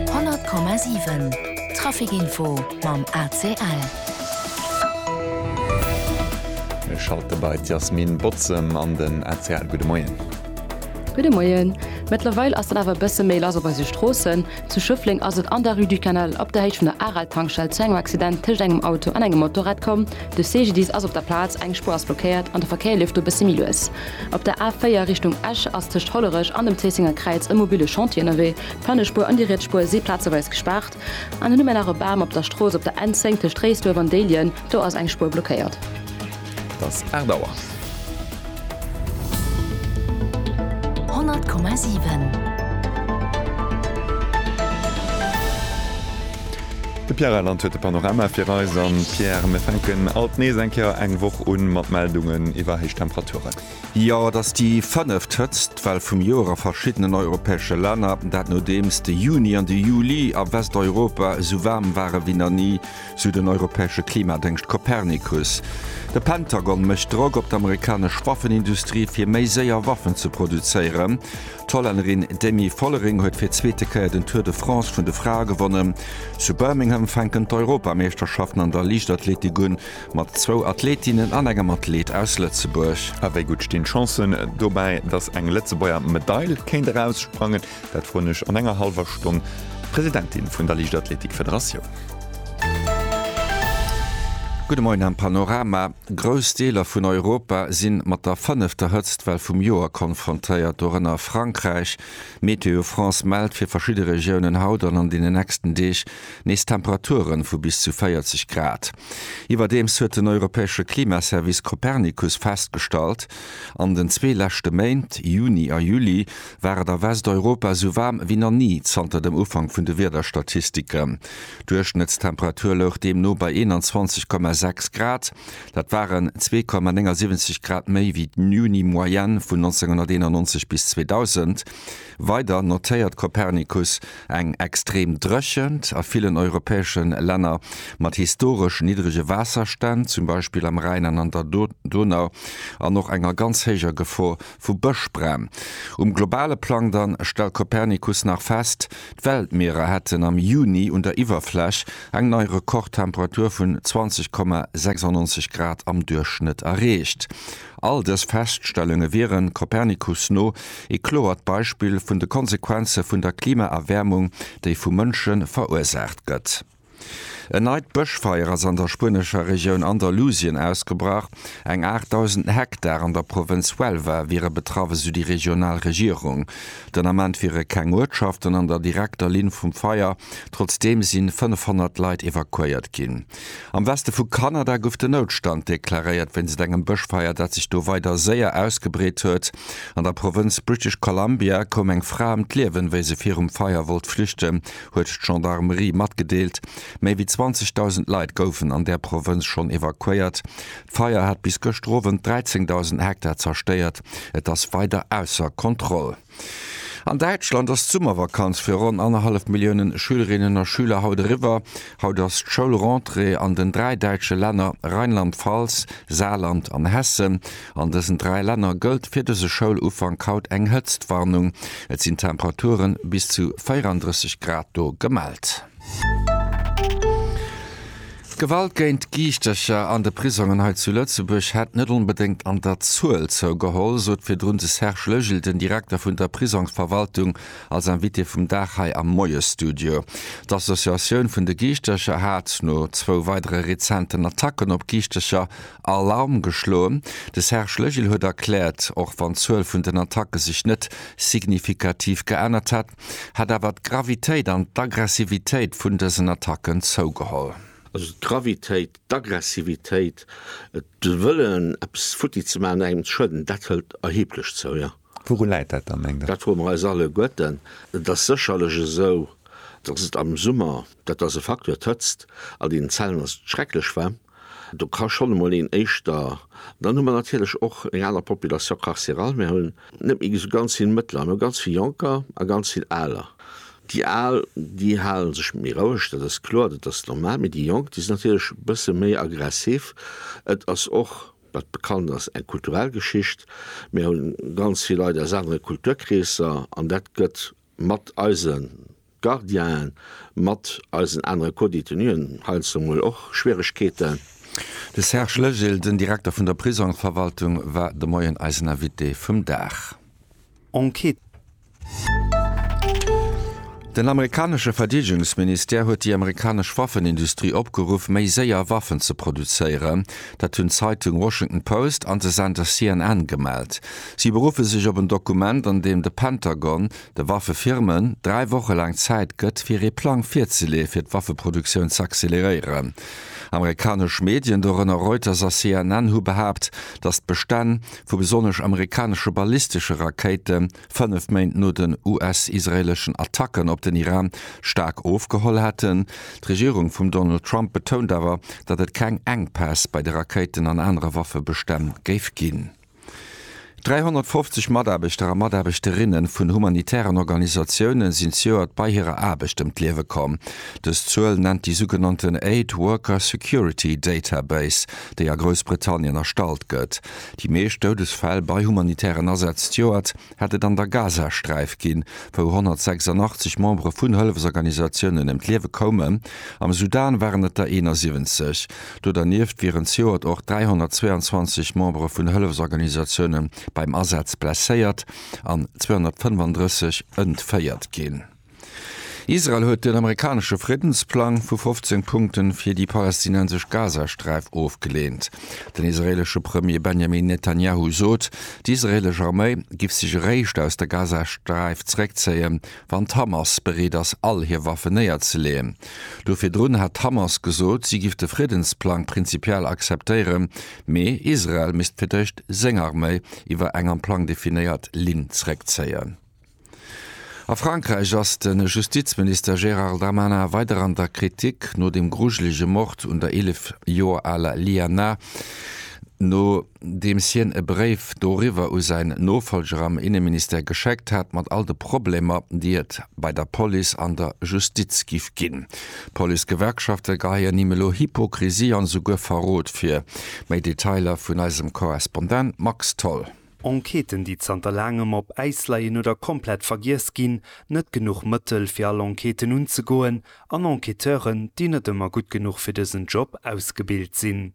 100,7 Traficinfo mam ACL. Mir schalte bei d'Yasmine Bozem an den ACL. Gudde Moien. Gudde Moien. Mëttlerweil ass dann awer e bësse méi lass op eise Stroossen. Zu Schëffleng ass et an der Rue du Canal op der Héicht vun der Aral-Tankstell zu engem Accident tëscht engem Auto an engem Motorrad komm. De CGDIS ass op der Plaz, eng Spuer ass blockéiert an de Verkéier leeft do e bësse méi lues. Op der A 4 Richtung Esch ass tëscht Hollerech an dem Zéissenger Kräiz e mobile Chantier ënnerwee. D'Frënnespuer an déi riets Spuer si plazeweis gespaart. An dunn hu mir nach e Bam op der Strooss op der N 10 tëscht Réisduerf an Déiljen. Do ass eng Spuer blockéiert. Et ass 8 Auer. 100,7. De Pierre Reyland huet de Panorama fir eis. An Pierre, mir fänken alt nees eng Kéier eng Woch un mat Meldungen iwwer héich Temperaturen. Jo, et ass déi fënneft Hëtzt Well vum Joer a verschiddenen europäesche Länner. Dat nodeems de Juni an de Juli a Westeuropa esou waarm ware wéi nach ni, sou den europäesche Klimadéngscht Copernicus. De Pentagon mécht Drock op d'Amerikanesch Waffenindustrie fir méi séier Waffen ze produzéieren. D'Hollännerin Demi Vollering huet fir d'zweete Kéier den Tour de France vun de Frae gewonnen. Zu Birmingham fänken d'Europameeschterschaften an der Liichtathletik un, mat zwou Athletinnen an engem Athlet aus Lëtzebuerg. A wéi gutt stinn d'Chancen dobäi, datt eng Lëtzebuerger Medail kéint eraussprangen? Dat froen ech an enger hallwer Stonn d'Presidentin vun der Liichtathletik-Federatioun. Gudde Moien am Panorama. Grouss Deeler vun Europa si mat der fënnefter Hëtztwell vum Joer konfrontéiert, dorënner Frankräich. Météo France mellt fir verschidde Regiounen haut an an deenen nächsten Deeg nees Temperature vu bis zu 40 Grad. Iwwerdeems huet den europäesche Klimaservice Copernicus festgestallt, an den zwee leschte Méint, Juni a Juli, war et a Westeuropa sou waarm wéi nach ni zanter dem Ufank vun de Wiederstatistiken. D'Duerchschnëttstemperatur louch deemno bei 21,6 Grad, dat waren 2,79 Grad méi wéi d'Juni-Moyenne vun 1991 bis 2000. Weider notéiert Copernicus eng extrem Dréchent a villen europäesche Länner mat historesch niddrege Waasserstänn, zum Beispill am Rhäin an an der Donau, an och enger ganz héijer Gefor Vu Bëschbrenn. Um globale Plang dann stellt Copernicus nach fest, d'Weltmierer hätten am Juni un der Iwwerfläch eng nei Rekordtemperatur vun 20,96 Grad am Duerchschnëtt erreecht. All dës Feststellunge wiere Copernicus no ee kloert Beispill vun de Konsequenze vun der Klimaerwäermung, déi vu Mënsche verursaacht gëtt. En neit Bëschfeier ass an der spuenescher Regioun Andalusien ausgebrach. Eng 8.000 Hektar an der Provënz Huelva wiere betraff, esou déi regional Regierung. Den Ament wiere keng Uertschaften an der direkter Linn vum Feier, trotzdeem si 500 Leit evakuéiert ginn. Am Weste vu Kanada gouf den Noutstand deklaréiert wéinst engem Bëschfeier, dat sech do weider séier ausgebreet huet. An der Provënz British Columbia koum eng Fra ëm d'Liewen, wéi se virum Feier wollt flüchten, huet d'Gendarmerie matgedeelt. Méi wéi 20.000 Leit goufen an där Provënz schonn evakuéiert. D'Feier hat bis gëschter Owend 13.000 Hektar zerstéiert. Et ass weider ausser Kontroll. An Däitschland ass d'Summervakanz fir ronn annerhallef Milliounen Schülerinnen a Schüler haut eriwwer. Haut ass d'Schoulrentrée an den dräi däitsche Länner Rheinland-Pfalz, Saarland an Hessen. An dësen dräi Länner gëllt fir dëse Schoulufank haut eng Hëtztwarnung. Et sinn Temperature bis zu 34 Grad do gemellt. D'Gewalt géint Giischtercher an de Prisongen hei zu Lëtzebuerg hätt net onbedéngt an der Zuel zougeholl, sot virdrun de Serge Lögel, den Direkter vun der Prisongsverwaltung, als Invité vum Dag hei am Moiesstudio. D'Associatioun vun de Giischtercher hat no zwou weidere rezenten Attacken op Giischtercher Alarm geschloen. De Serge Legil huet erkläert, och wann d'Zuel vun den Attacke sech net signifikativ geännert hätt, hätt awer d'Gravitéit an d'Aggressivitéit vun dësen Attacken zougeholl. Also d'Gravitéit, d'Aggressivitéit, de Wëllen eppes futti ze maachen, engem ze schueden, dat hëlt erheblech zou, jo. Wourun läit dat da, mengt Der? Dat froe mer eis alleguerten. Et ass sécherlech esou, datt et am Summer, dat ass e Facteur, d'Hëtzt an deenen Zellen ass schrecklech waarm, do ka schonn emol een éischter. Dann hu mer natierlech och eng aner Population carcérale. Mir hunn net méi esou ganz vill Mëttler. Mir hu ganz vill Jonker a ganz vill Aler. Déi Al, déi hale sech méi roueg, dat ass kloer, dat ass normal, mee déi Jonk, déi sinn natierlech e bësse méi aggressiv. Et ass och Wat bekannt ass, eng kulturell Geschicht. Mir hu ganz vill Leit aus anere Kulturkreesser an dat gëtt mat eise Gardienen, mat eisen anere Co-Detenuen heiansdo emol och Schwieregkeeten. De Serge Legil, den Direkter vun der Prisongverwaltung, war de Moien eisen Invité vum Dag. Enquête Den amerikanesche Verdeedegungsministère huet déi amerikanesch Waffenindustrie opgeruff, méi séier Waffen ze produzéieren. Dat hunn d'Zeitung Washington Post an de Sender CNN gemellt. Si beruffe sech op en Dokument, an deem de Pentagon de Waffefirmen dräi Woche laang Zäit gëtt, fir ee Plang virzeleeë fir d'Waffeproduktioun z'acceleréieren. Amerikanesch Medien, dorënner Reuters a CNN, hu behaapt, datt d'Bestänn vu besonnesch amerikanesche ballistesche Rakéite fënnef Méint no den US-israeeleschen Attacken op den Iran staark ofgeholl hätten. D'Regierung vum Donald Trump betount awer, datt et keng Enkpäss bei de Rakéiten an anere Waffebestänn géif ginn. 350 Mataarbechter a Mataarbechterinnen vun humanitären Organisatiounen sinn zejoert bei hirer Aarbecht ëm d'Liewe komm. Dës Zuel nennt déi sougenannten Aid Worker Security Database, déi a Groussbritannien erstallt gëtt. Déi meescht Doudesfäll bei humanitären Asätz d'Joert hätt et an der Gazasträif ginn, wou 186 Membere vun Hëllefsorganisatiounen ëm d'Liewe koumen. Am Sudan waren et der 71. Do dernieft wieren zejoert och 322 Membere vun Hëllefsorganisatiounen beim Asaz blesséiert an 235 entféiert ginn. Israel huet den amerikanesche Friddensplang vu 15 Punkte fir déi palästinensesch Gazasträif ofgeleent. Den israeelesche Premier Benjamin Netanjahu sot, d'israeelesch Arméi giff sech eréischt aus der Gazasträif zeréckzéien, wann d'Hamas bereet ass, all hir Waffen néierzeleeën. Do virdrun hat d'Hamas gesot, si giff de Friddensplang prinzipiell akzeptéieren, mee Israel misst fir d'éischt seng Arméi iwwer eng am Plang definéiert Linn zeréckzéien. A Frankräich ass de Justizminister Gérard Darmanin weider an der Kritik no dem grujelege Mord un der 11 Joer aler Liana, nodeems hien e Bréif doriwwer u säin Nofollger am Inneministère geschéckt hat, mat all de Problemer, déi et bei der Police an der Justiz giff ginn. D'Policegewerkschafte geheien him elo Hypokrisie an esouguer Verrot vir. Méi Detailer vun eisem Korrespondent Max Tholl. Enquêten, déi zanter laangem op Äis leien oder komplett vergiess ginn, net genuch Mëttel, fir all Enquêten unzegoen, an Enquêteuren, déi net ëmmer gutt genuch fir dësen Job ausgebilt sinn.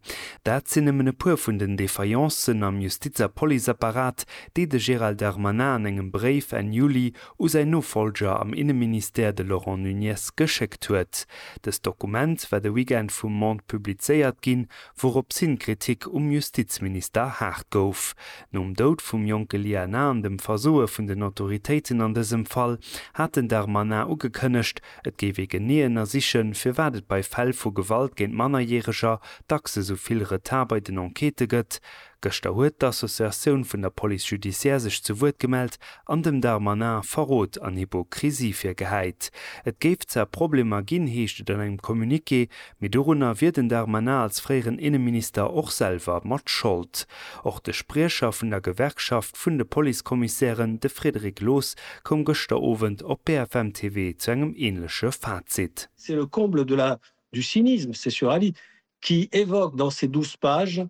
Dat sinn nëmmen e puer vun den Défaillencen am Justiz a Policeapparat, déi de Gérald Darmanin an engem Bréif Enn Juli u säin Nofolger am Inneministère, de Laurent Nunez, geschéckt huet. Dëst Dokument war de Weekend vum Monde publizéiert ginn, Wouropshin d'Kritik um Justizminister haart gouf. Nom Doud vum jonke Lia Na an dem Versoe vun den Autoritéiten an dësem Fall, hat den Darmanin ugekënnegt, et géif ee genee ënnersichen, firwat et bei Fäll vu Gewalt géint Mannerjäreger dacks esou vill Retard bei den Enquêtë gëtt, Gëschter huet d'Associatioun vun der Police judiciaire sech zu Wuert gemellt an dem Darmanin Verrot an Hypokrisie virgehäit. Et géif zwar Problemer ginn, heescht et an engem Communiqué, mee dorunner wier den Darmanin als fréieren Inneminister och selwer mat Schold. Och de Spriecher vun der Gewerkschaft vun de Policekommissären, de Frédéric Loos, koum gëschter Owend op BFM TV zu engem änleche Fazit. C'est le comble de la du cynisme, c'est sur Ali qui évoque dans ses 12 pages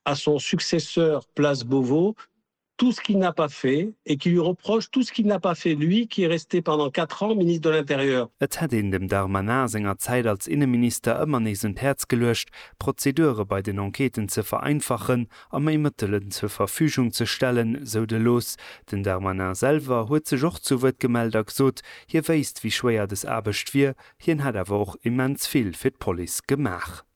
à son successeur place Beauvau tout ce qu'il n'a pas fait et qui lui reproche tout ce qu'il n'a pas fait, lui qui est resté pendant quatre ans Ministre de l'Intérieur. Et hätt een dem Darmanin senger Zäit als Inneminister ëmmer nees un d'Häerz geluecht, d'Prozedure bei den Enquêten ze vereinfachen a méi Mëttelen zur Verfügung ze stellen, sou de Loos. Den Darmanin selwer huet sech och zu Wuert gemellt a gesot, hie wéisst, wéi schwéier des Aarbecht wier, hien hätt awer och immens vill fir d'Police gemaach.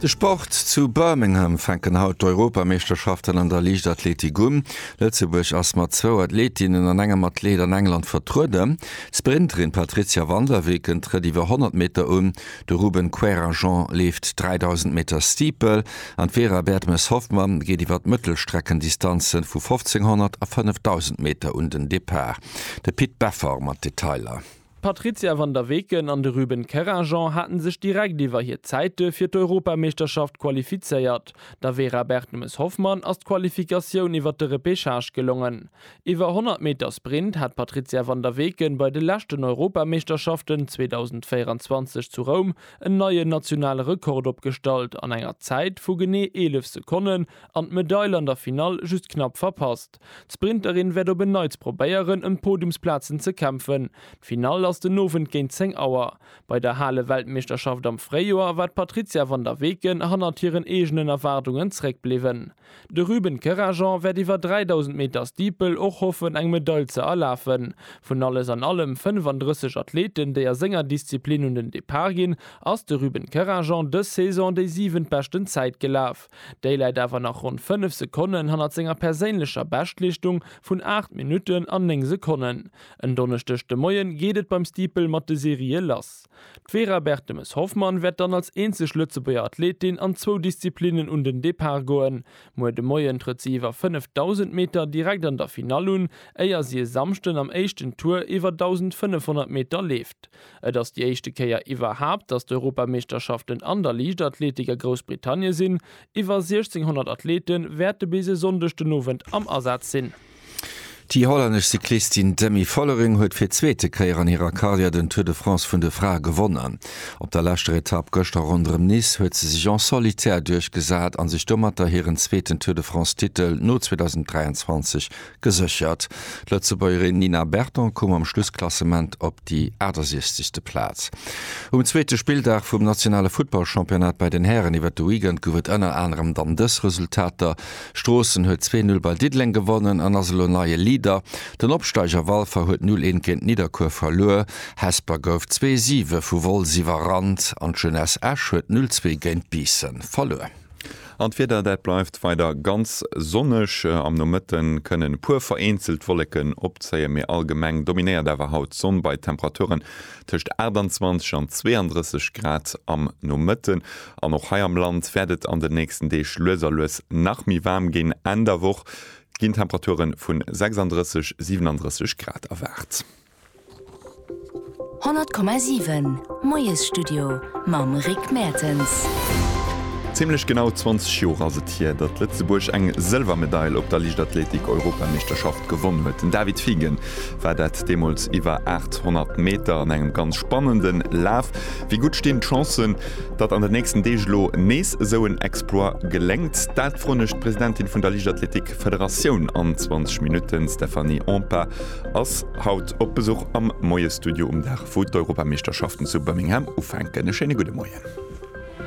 De Sport, Zu Birmingham fänken haut d'Europameeschterschaften an der Liichtathletik un. Lëtzebuerg ass mat zwou Athletinnen an engem Athlet an England vertrueden. D'Sprinterin Patrizia van der Weken trëtt iwwer 100 Meter un, de Ruben Querajant leeft 3.000 Meter Steeple an d'Vera Bertemes-Hoffmann geet iwwer d'Mëttelstreckendistanze vu 1.500 a 5.000 Meter un den Depart. De Pit Beffer mat Detailer. D'Patrizia van der Weken an de Ruben Kerrageon hate sech direkt iwwer hir Zäite fir d'Europameeschterschaft qualifizéiert. Der Vera Bertemes-Hoffmann ass d'Qualifikatioun iwwer de Repechage gelongen. Iwwer 100 Meter Sprint hat d'Patrizia van der Weken bei de leschten Europameeschterschaften 2024 zu Roum en neien nationale Rekord opgestallt an enger Zäit vu genee 11 Sekonnen an d'Medail an der Finall just knapp verpasst. Start. D'Sprinterin wäert op en Neits probéieren ëm d'Podiumsplazen ze kämpfen. D'Finall ass den Owend géint 10 Auer. Bei der Hale-Weltmeeschterschaft am Fréijoer war d'Patrizia van der Weken hannert hiren eegenen Erwaardungen zréckbliwwen. De Ruben Kerajan wäert iwwer 3.000 Meter Steeple och hoffen eng Medail ze erlafen. Vun alles an allem 35 Athleten déi a senger Disziplin un den Depart ginn, ass de Ruben Kerajan dës Saison déi siwentbeschten Zäit gelaf. Déi läit awer nach ronn 5 Sekonnen hannert senger perséinlecher Beschtleeschtung vun 8 Minutten an 9 Sekonnen. En Donneschdeg de Moie geet et beim Steeple mat de Serië lass. D'Vera Bertemes-Hoffmann wäert dann als eenzeg Lëtzebuerger Athletin an zwou Disziplinnen un den Depart goen. Muer de Moien trëtt si iwwer 5.000 Meter direkt an der Finall un, éier si e Samschden am éischten Tour iwwer 1.500 Meter leeft. Et ass déi éischte Kéier iwwerhaapt, datt d'Europameeschterschaften an der Liichtathletik a Groussbritannie sinn. Iwwer 1600 Athlete wäerte bis e Sonndeg den Owend am Asaz sinn. Déi hollännesch Cyclistin Demi Vollering huet fir d'zweete Kéier an hirer Karriär den Tour de France vun de Frae gewonnen. Op der leschter Etapp gëschter ronderëm Nice huet se sech en solitaire duerchgesat a sech domatter hiren zweeten Tour-de-France-Titel no 2023 Geséchert. D'Lëtzebuergerin Nina Berton koum am Schlussklassement op déi 68. Plaz. Um zweete Spilldag vum nationale Futtballchampionnat bei den Hären iwwert de Weekend gouf et ënner anerem dann dës Resultater, Stroossen huet zwee Null bei Diddeleng gewonnen an ass elo neie Leader, den Opsteiger Walfer huet Null eent géint Nidderkuer verluer, Hesper gouf zwee siwe vu Wolz iwwerrannt an d'Jeunesse Esch huet Null zwee géint Biissen verluer. An d'Wieder, dat bleift weider ganz sonneg. Am Nomëtte kënnen e puer vereenzelt Wolleken opzéien, mee allgemeng dominéiert awer haut d'Sonn bei Temperaturen tëscht 28 an 32 Grad am Nomëtte. An och hei am Land wäert et an den nächsten Deeg lues a lues nach méi waarm ginn. Enn der Woch ginn Temperature vu 36, 37 Grad erwaart. 100,7 Moiesstudio mam Rick Mertens. Zimmlech genau 20 Joer ass et hier, datt Lëtzebuerg eng Sëlwermedail op der Liichtathletik-Europameeschterschaft gewonn huet. Den David Fiegen war dat deemools iwwer 800 Meter an engem ganz spannende Laf. Wéi gutt stinn d'Chancen, datt an den nächsten Deeg elo nees esou en Exploit geléngt? Dat froen ech d'Presidentin vun der Liichtathletik-Federatioun an 20 Minutten, Stephanie Ompa. Ass haut op Besuch am Moie Studio um Dag wou d'Europameeschterschaften zu Birmingham ufänken. E schéine gudde Moien.